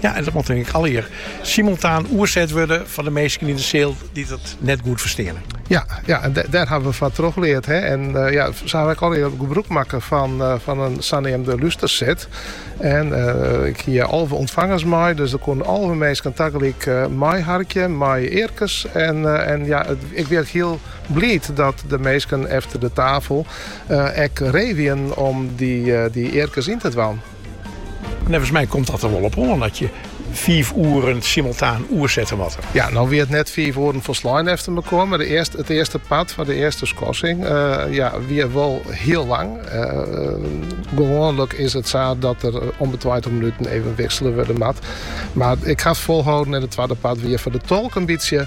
Ja, en dat moat ik allegear simultaan oerset wurde foar de minsken yn de seal dy't it net goed fersteane. Ja, ja en daar hebben we van teruggeleerd. Hè? En uh, ja, ze hebben al heel gebruik maken van, uh, van een zogenaamde lusterset. En uh, ik hier alve ontvangers mee, dus er konden alve mensen tegelijk uh, mij harken, mij eerkes. En, en ja, het, ik werd heel blij dat de mensen achter de tafel uh, ek revien om die, die eerkes in te dwan. Neffens my komt dat der wol op oan dat je fiif oeren simultaan oersette moatte. Ja, no wie it net fiif oeren folslein efter elkoar, mar it earste, it earste part fan de earste skorsing eh, ja, wie wol hiel lang. Eh, gewoanlik is it sa dat der om de 20 minuten even wiksele wurde moat. Mar ik ha 't folholden en it twadde part wie foar de tolk in bytsje